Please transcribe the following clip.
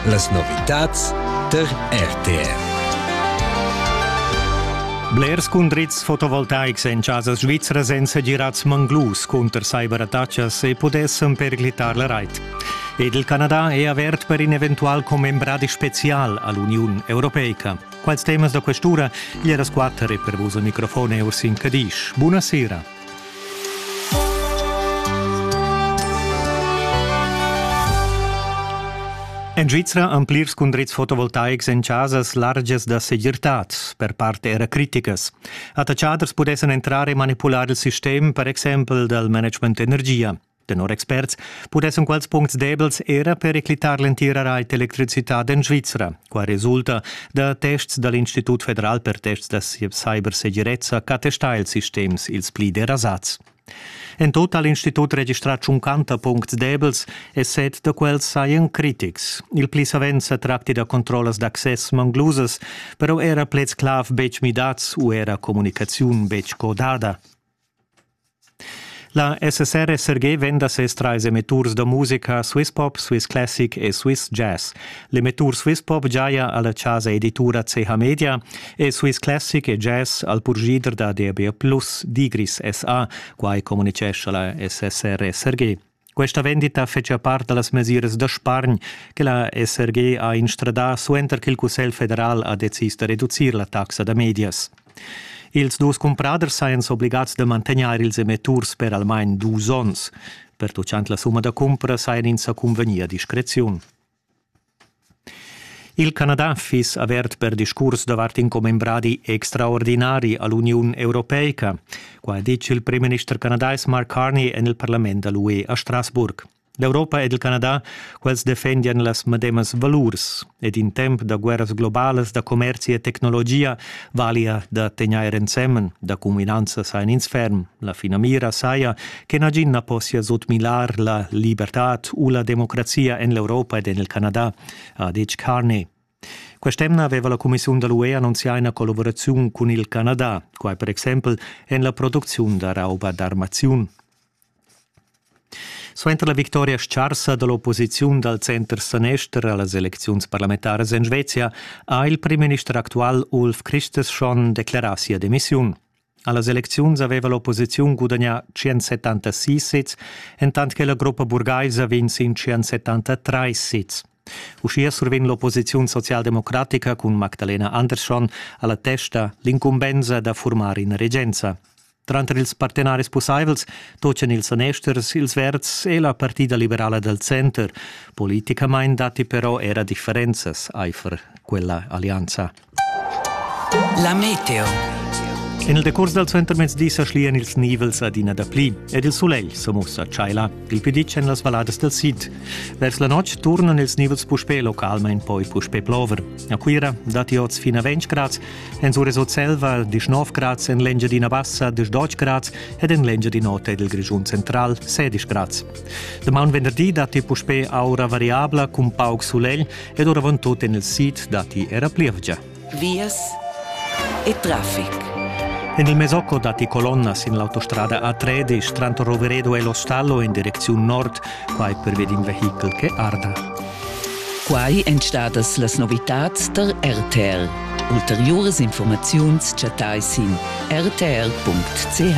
Las novitads tar RTR. Blers cundrits fotovoltaics en chasas svizras èn segirads manglus cunter cyberattacas e pudessan perclitar la rait. Ed il Canada è avert per in eventual commembradi spezial a l'Uniun Europeica. Quals temas da questura, gli era squatter e per vos al microfon Ursin Cadisch. Buonasera. En Svizra han plirs cundrits fotovoltaics en chasas largias da segirtad. Per part era criticas. Attachaders pudessan entrar e manipular il sistem, per exempel dal management energia. Tenor experts pudessan quels puncts debels era periclitar l'entira rait electricitad en Svizra. Qua resulta da tests dal Institut federal per tests da cybersegirezza ch'attesta ils sistems ils pli derasads. En tut ha l'Institut registrà tschuncanta puncts debels e set da quels sajan critics. Il pli savens sa tracti da controllas d'access manglusas, però era pleds clav betg midads u era communicaziun betg codada. La SSR SRG vend da ses trais emetturs da musica Swiss Pop, Swiss Classic e Swiss Jazz. L'emettur Swiss Pop giaja alla chasa editura CH Media e Swiss Classic e Jazz al purgider da DB+, Digris SA, quai communicescha la SSR SRG. Questa vendita fetschia part da las mesiras da spargn che la SRG ha instradà suenter ch'il Cussegl federal ha decis da reducir la taxa da medias. Ils dus cumpraders sajan s'obligads da mantegnair ils emetturs per almain dus onns. Pertuchant la summa da cumpra sajan ins sa cunvegnì a discreziun. Il Canada fiss avert per discurs davart in commembradi extraordinari a l'Uniun europeica. Qua ha ditg il primminister canadais Mark Carney en il parlament da l'UE a Strasburg. L'Europa ed il Canada, quels defendian las medemas valurs ed in temp da guerras globalas, da commerzi e tecnologia valia da tegnair ensemen, da cuminanza sajan ins ferm. La finamira saja che nagin na possia sutmilar la libertad u la democrazia en l'Europa ed en il Canada, ha detg Carney. Quest'emna aveva la Commissiun da l'UE annunzià ina collaboraziun cun il Canada, quai per exempel en la producziun da rauba d'armaziun. Suenter la victoria scarsa dall'opposiziun dal center-sanester a las elecziuns parlamentaras en Svezia ha il primminister actual Ulf Kristersson declarà sia demissiun. Allas elecziuns haveva l'opposiziun gudagnà tschient-settantasis sezs, entant che la gruppa burgaisa vegn sin tschient-settantatrais sezs. Uschia survegn l'opposiziun socialdemocratica cun Magdalena Andersson alla testa l'incumbensa da formar ina regenza. Tranter ils partenaris pussaivels tochan ils sanesters, ils verds e la partida liberala dal center. Politicamain datti però era differenzas aifer quella allianza. La meteo. En il decurs dal suentermezdi sa schlian ils nivels adina dapli ed il sulegl sa mussa tschaila il più ditg en las valladas dal sid. Vers la notg turnan ils nivels puspè localmain poi puspè plover. A Cuira datti oz fin a 20 grads, en Suresocelva 19 grads, en l'Engiadina Bassa 18 grads ed en l'Engiadin'Ota ed il Grischun central 16 grads. Damaun venderdi datti puspè aura variabla cun pauc sulegl ed oravant tut en il sid datti era plievgia. Vias e traffic. En il Mesocco datti colonnas sin l'autostrada A3 di Stranto Roveredo e Lo Stallo in direcziun nord, quai perved in vehichel che arda. Quai èn stadas las novitads tar RTL. Ulteriuras informaziuns chattai sin rtl.ch.